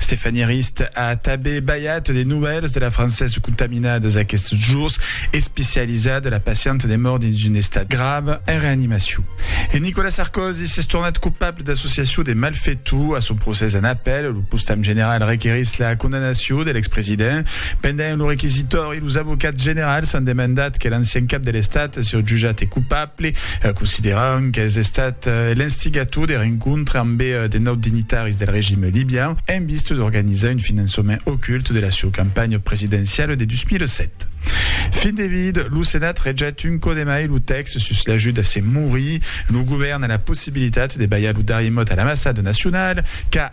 Stéphanie Arist a tanben balhat de novèls de la Française contaminadas aquests jours, especializat de la pacienta de mòrt dins un estat grave en reanimacion. E Nicolas Sarkozy s'es tornat copable d'associacion de malfetor. A son procès en apèl, lo postam general requerís la condamnacion de l'expresident. Pendent lo requisitori, Los avocats generals an demandat que l'ancian cap de l'Estat siá jutjat cupable, consideran qu'es estat l'instigator de rencontre ambe de naut dignitaris del regime libian en vista d'organizar un finançament ocult de la sieu campanha presidenciala de 2007. Fin de vid, lo Senat rejet un còp de mai lo tèxt sus l'ajut a se morir. Lo govèrn a la possibilitat de balhar lo darrier mot a l'ambassada nacionala, qu'a.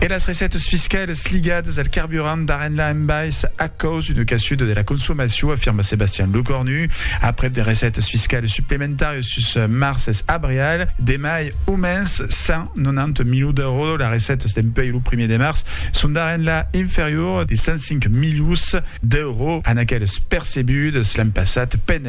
E las recètas fiscalas ligadas al carburant d'Arenla en bais a caus d'una caçuda de la consomacion, afirma Sebastian Lecornu. Aprèp de recètas fiscalas suplementàrias sus març es abrial, demai au mens 190 milions d'èuros. Las recètas dempuèi lo primièr de març son d'Arenla inferior de 105 milions d'èuros a n'aquelas percebudas l'an passat.